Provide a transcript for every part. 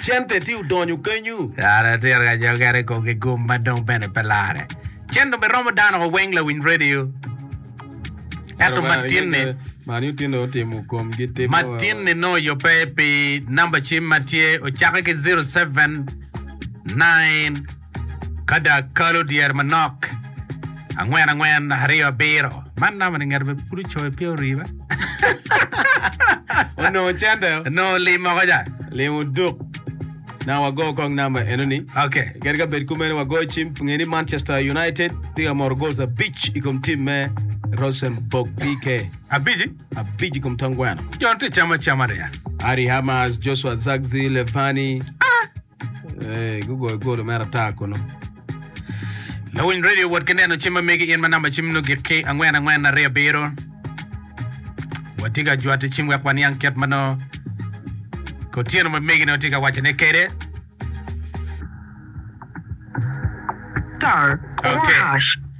Cente tye odonyo kenyu. Kare atir ka jo kene kong ki gum ma dong bene pe lare. Cen dong biromo dano wa weng lawiny radio. Eto matinni. Man utine otimo komgi timo. Matinni no oyope pi namba cim ma tye ocake ki 07 9 Ka dak kalo dyere manok angwen angwen aryo abiro. Man namba ni ngat pud ocoyo pe oriba. Onongo cente. Onongo lim moko ja. Lim oduk. Na wago kong namba eno ni. Okay. Kadi ka bed kumeno wagoyo cim nge ni Manchester United tye ka moro goals abic i kom tim me Rosenborg BK. Abici? Abic i kom tong gweno. Jon tye camo acama riya. Ari Hamas, Joshua Zagzi, Levani. Gugoyo golo mere ata kunu. Lawiny radio wot ki neno cim ma megi in ma namba cim nongo gik ki angwen angwen aryo abiro. Watye ka jwatte cim wek waniang kit ma nongo Otyeno ma megi nongo tye ka wacone kwede. Star or Okay. hash.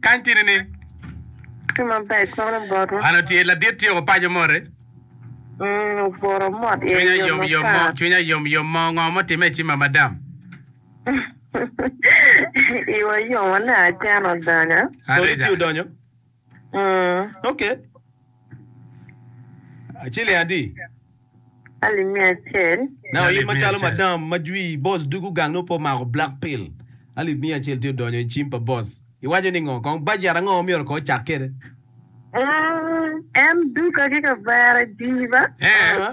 Kany tini ni, An atye ladit tyeko paco moti. Cwinya yomyom mo, cwinya yomyom mo, ngo ma otimme ci ma madam? Sori ci odonyo. Mm. Ok. Ciling adi? Alim mia acel. Na Alip oim mia macalo acel. madam ma jwi boss dugu gang nongo pe omako black pill. Alip mia acel tye odonyo i cim pa boss. Iwaco ni ngo? Kong budget ango ma myero ko ocak kede? Mm, en duka ki kavera jiba. Eh. Ah.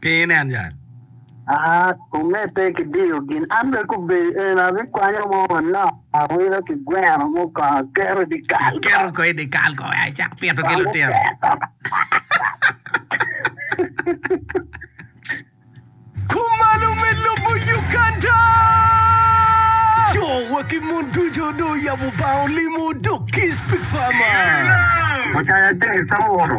Pingo inen yat? Aa, kume pe kidiyo gin. An bene gubedo eno, abikwanyo mo manok, awilo ki gweno mo kong, aketo i dikal kong. Keto kong i dikal kong, aa, icak pito ki lutino. Kumalo me lobo Uganda. Co wa ki mon ducu dong oyabo bar olimo dok kiss pi farmer. Mucaya James Awoto